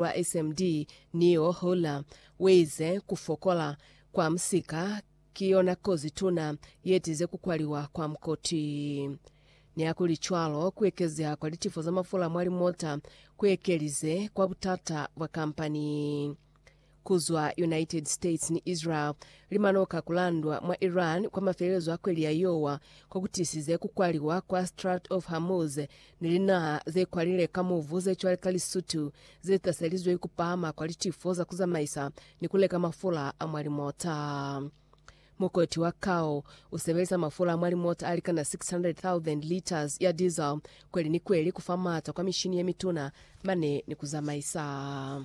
lwa SMD, Neo Hooler, uize, Ku fokola kwa musika ki yona kozi tuna yetize ku kwaliwa kwa mukoti. Nihakulicwalo, ku ekezeha kwa litifo za mafula mwa limota ku ekelize kwa butata bwa kampani. Ku zwa United States ni Israel, limanoka ku landwa mwa Iran kwa mafelelezo a kweli ya Yowa, ko ku tisize ku kwaliwa kwa Strait of Hormuz ni linaha ze kwalile ka mubu ze cwale ka Lesotho ze taselizwe ku pahama kwa litifo za ku zamaisa ni ku leka mafula a mwa limota. Mukoti wa kao u sebelisa mafula a mwa limota a likana 600,000 liters ya diesel kweli ni kweli ku fa mata kwa mishini ye mituna mane ni ku zamaisa.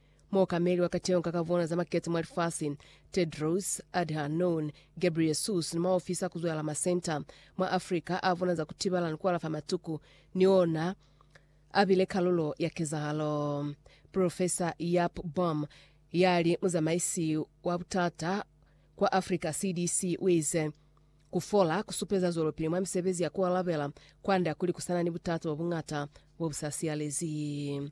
Muokameli wa kateho ka kavona za makete mwa lifasi, Tedros Adhanom Ghebreyesus, ni maofisi a kuzwala masenta mwa Africa a vona za kutibala ni kualafa matuku ni ona a bile kalulo ya kezahalo. Profesa Jaap Boom, ya li muzamaisi wa butata kwa Africa CDC, uize, Ku fola ku supeza zwelopili mwa misebezi ya kualabela kwanda kuli kusana ni butata bwa buñata bo bu sa siyalezi.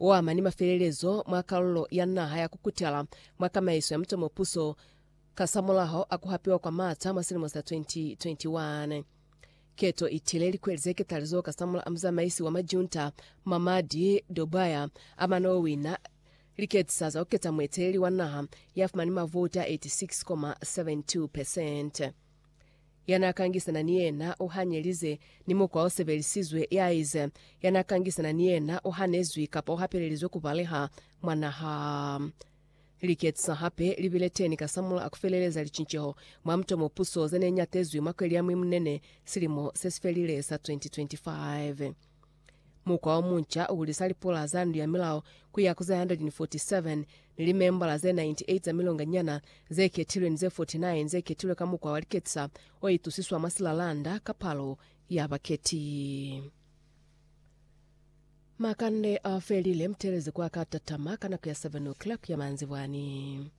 o ama ni mafelelezo mwa kalulo ya naha ya kukutala mwa kamaiso ya mutomo puso kasamulaho a ku hapiwa kwa maata mwa silimo sa 2021. Keto i tile likweli ze ketalizo kasamula a muzamaisi wa majunta Mamadi Doumbouya a mane o wina liketisa za ku keta mueteleli wa naha ya fumani mavouti a 86,72 percent. Ya n'a kangisana ni yena u hanyelize, ni mukwa o sebelisizwe ya ize, Ya n'a kangisana ni yena u hanezwi kapa u hapelelizwe ku baleha mwa naha. Liketisa hape li bile teni kasamulaho ku feleleza licinceho mwa muto mo puso ze ne nyatezwi mwa kweli ya Mwimunene silimo se si felile sa 2025. Mukwa omunca uhulisa lipola za Ndu ya Milao ku ya ku ze 147, ni limembala ze 98 za milonganyana ze ketilwe ni ze 49 ze ketilwe ka mukwa wa liketisa o itusiswa mwa silalanda ka palo ya baketi. Makande a felile, mutelezi ku a ka tatama ka nako ya 7:00 ya manzibwani.